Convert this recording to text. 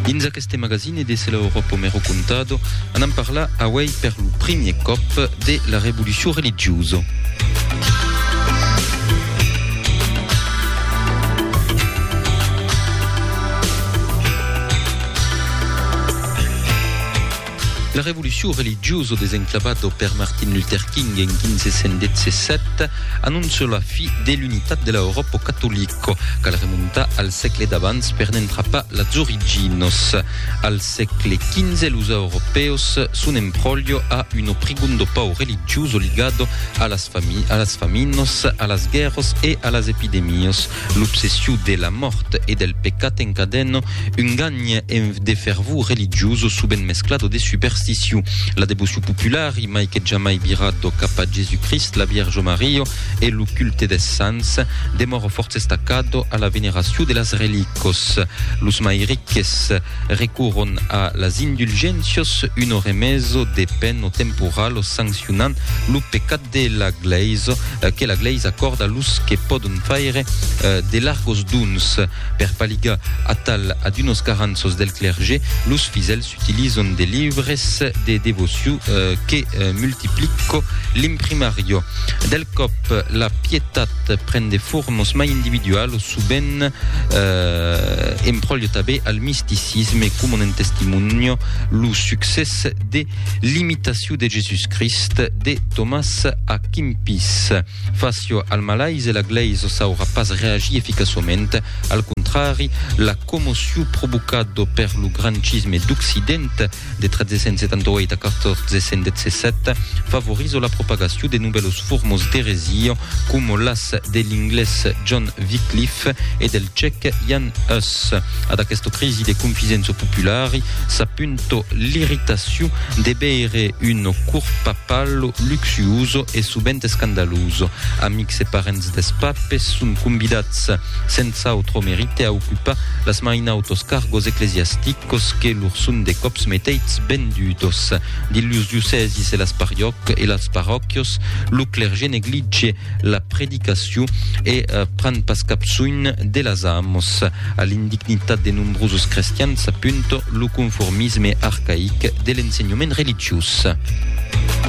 Dins aqueste magazine de Se la Europa me lo contado, anam parlar auei per lo primier còp de la revolucion religiosa. La revolucion religiosa desenclavada per Martin Luther King en 1517 anonça la fi de l'unitat de la Euròpa catolica. Cal remontar al sègle d'abans per n'entrapar las originas. Al sègle XV los europèus son en pròlio a un o prigondo pau religioso ligado a las faminas, a las guèrras e a las epidemias. L'obsession de la mòrt e del pecat encadena un ganh de fervor religiós sovent mesclado de supersticion. La devocion popular i mai que jamai virat do cap a Jesucrist, la Vièrge Maria e lo culte des sants demòra fòrça estacado a la veneracion de las relícos. Los mai riques recorron a las indulgéncias, un oremèso de pen o temporal, sancionant lo pecat de la glèis que la glèis acòrda los que pòdon faire de largos dons. Per paligar atal a d'unos caranços del clergé, los fidèls s'utilizon de libres de devociu que multiplico l'imprimariò. Del còp la pietat pren de formos mai individualos, sovent empròlio tabé al misticisme coma un testimonio lo succès de L'imitacion de Jesús Crist de Tomàs A. Kimpis. Facio al malais e la glèisa saurà pas reagir eficaçament. Al contrari, la commocion provocada per lo grancisme d'Occident de 1378 a 1417 favoriza la propagacion de novèlos formos d'eresia coma las de l'inglés John Wycliffe e del cèc Jan Hus. Ad aquesta crisi de confisença populari s'apunta sotto l'irritaziu de beire un cur papallo luxuoso e suvent escandaloso. Amics e parents des papes son convidats, senz'autro merite, a ocupar las mainautos cargos ecclesiasticos que lor son de cops meteits ben dudos. Dins los diocèsis e las pariòc e las paròquios, lo clergé neglige la predicaciu e pren pas cap soin de las amos, a l'indignitat de nombrosos crestians, a punt Lo conformisme arcaic de l'ensenhament religiós.